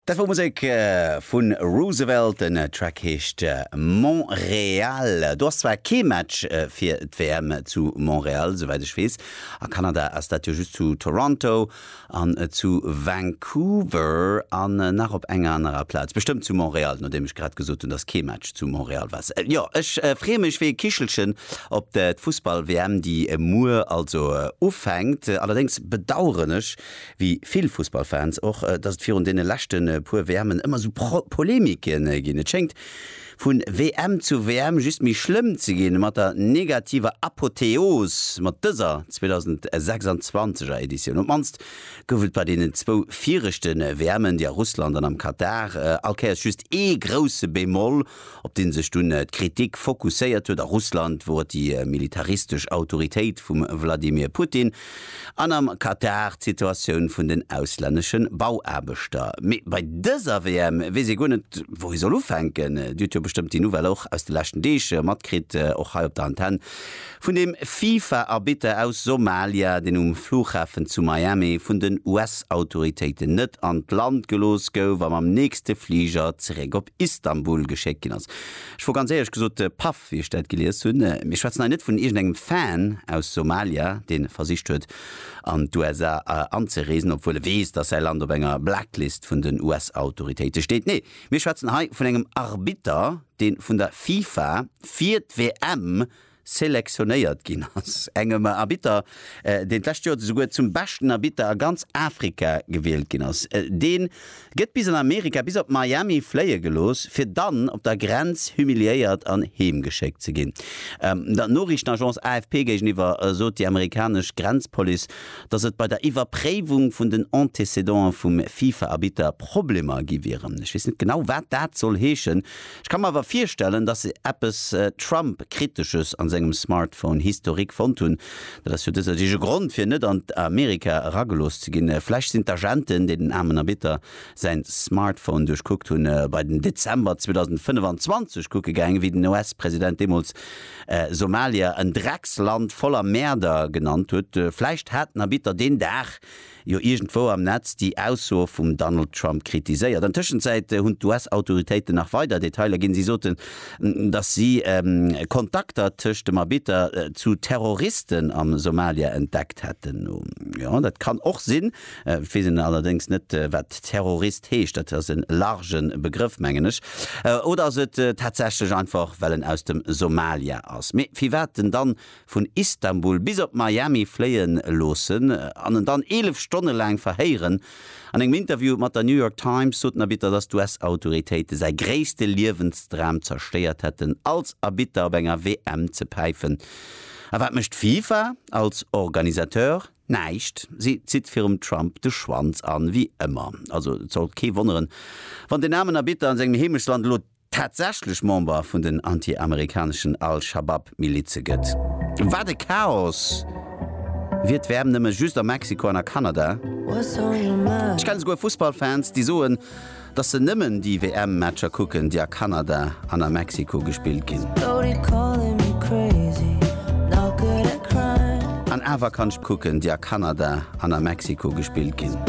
Dat wor Musek vun Roosevelt, den Track heescht Montréal. Do ass zwar kee Match fir d'WM zu Montréal, souwäit ech weess. A Kanada ass dat jo just zu Toronto an zu Vancouver an nach op enger anerer Plaz, bestëmmt zu Montréal, nodeem ech grad gesot hunn, dass kee Match zu Montréal war. Jo, ech freeë mech wéi e Kichelchen op d'Fussball-WM, déi muer also ufänkt. Allerdéngs bedaueren ech, wéi vill Fussballfans och, dass et virun deene leschte puer WMen ëmmer esou Polemike ginn. Et schéngt vu WM zu WM just méi schlëmm ze ginn, mat der negativer Apotheos mat dëser 2026 er Editioun. Op d'mannst gouf et bei deenen zwou viregte WMen, déi a Russland an am Katar, all Kéiers just ee grousse Bémol, op dee sech dunn d'Kritik fokusséiert huet a Russland, wou et déi militaristesch Autoritéit vum Wladimir Putin, an am Katar d'Situatioun vun den auslännesche Bauaarbechter. Mee bei dëser WM weess ee guer net, wou ee soll ufänken. Dir hutt jo bestëmmt déi Nouvelle och aus de leschten Deeg matkritt, och hei op der Antenn. Vun dem FIFA-Arbitter aus Somalia, deen um Flughafen zu Miami vun den US-Autoritéiten net an d'Land gelooss gouf a mam nächste Fliger zeréck op Istanbul geschéckt ginn ass. Ech wor ganz éierlech gesot paff, wéi ech dat gelies hunn. Mir schwätzen hei net vun iergendengem Fan aus Somalia, dee versicht huet, an d'USA anzereesen, obwuel e weess, datt säi Land op enger Blacklist vun den US-Autoritéite steet. Nee, mir schwätzen hei vun engem Arbitter, dee vun der FIFA fir d'WM selektionéiert ginn ass, engem Arbitter, deen d'lescht Joer esouguer zum beschten Arbitter a ganz Afrika gewielt ginn ass. Dee gëtt bis an Amerika, bis op Miami fléie gelooss, fir dann op der Grenz humiliéiert an heem geschéckt ze ginn. Der Noriichtenagence AFP géigeniwwer sot déi amerikanesch Grenzpolice, datt et bei der Iwwerpréiwung vun den Antécédanten vum FIFA-Arbitter Problemer gi wieren. Ech weess net genau, wat dat soll heeschen, Ech ka mer awer virstellen, dass se eppes Trump-Kritesches an sengem Smartphone-Historique fonnt hunn. Dat ass jo dëser Deeg e Grond, fir net an Amerika eragelooss ze ginn. Vläch sinn d'Agenten, déi den aarmen Erbitter säin Smartphone duerchkuckt hunn, bei den Dezember 2025 kucke gaangen, wéi den US-President deemools Somalia en Drecksland voller Mäerder genannt huet. Vläicht hat den Erbitter deen Dag jo iergendwou am Netz déi Aussoe vum Donald Trump kritiséiert. An Tëschenzäit hunn d'US-Autoritéiten nach weider Detailer ginn. Si soten, datt si Kontakter tëscht dem Arbitter zu Terroristen am Somalia entdeckt hätten. Jo, dat kann och sinn. Et weess een allerdéngs net, wat Terrorist heescht. Dat ass e large Begrëff, mengen ech. Oder ass et tatsächlech einfach, well en aus dem Somalia ass? Mee firwat en dann vun Istanbul bis op Miami fléie loossen an en dann 11 Stonne laang verhéieren. An engem Interview mat der New York Times sot den Arbitter, datt d'US-Autoritéite säi gréisste Liewensdram zerstéiert hätten, als Arbitter op enger WM ze päifen. A wat mécht d'FIFA als Organisateur? Näischt. Si zitt virum Trump de Schwanz an, wéi ëmmer. Also et sollt kee wonneren, wann den aarmen Arbitter an sengem Heemechtsland elo. tatsächlech Member vun den anti-amerikaneschen Al-Shabab-Milize gëtt. Wat e Chaos! Wier d'WM nëmme just a Mexiko an a Kanada? Ech kenne souguer Fussballfans, déi soen, dass se nëmmen déi WM-Matcher kucken, déi a Kanada an a Mexiko gespillt ginn. An awer kann ech kucken, déi a Kanada an a Mexiko gespillt ginn.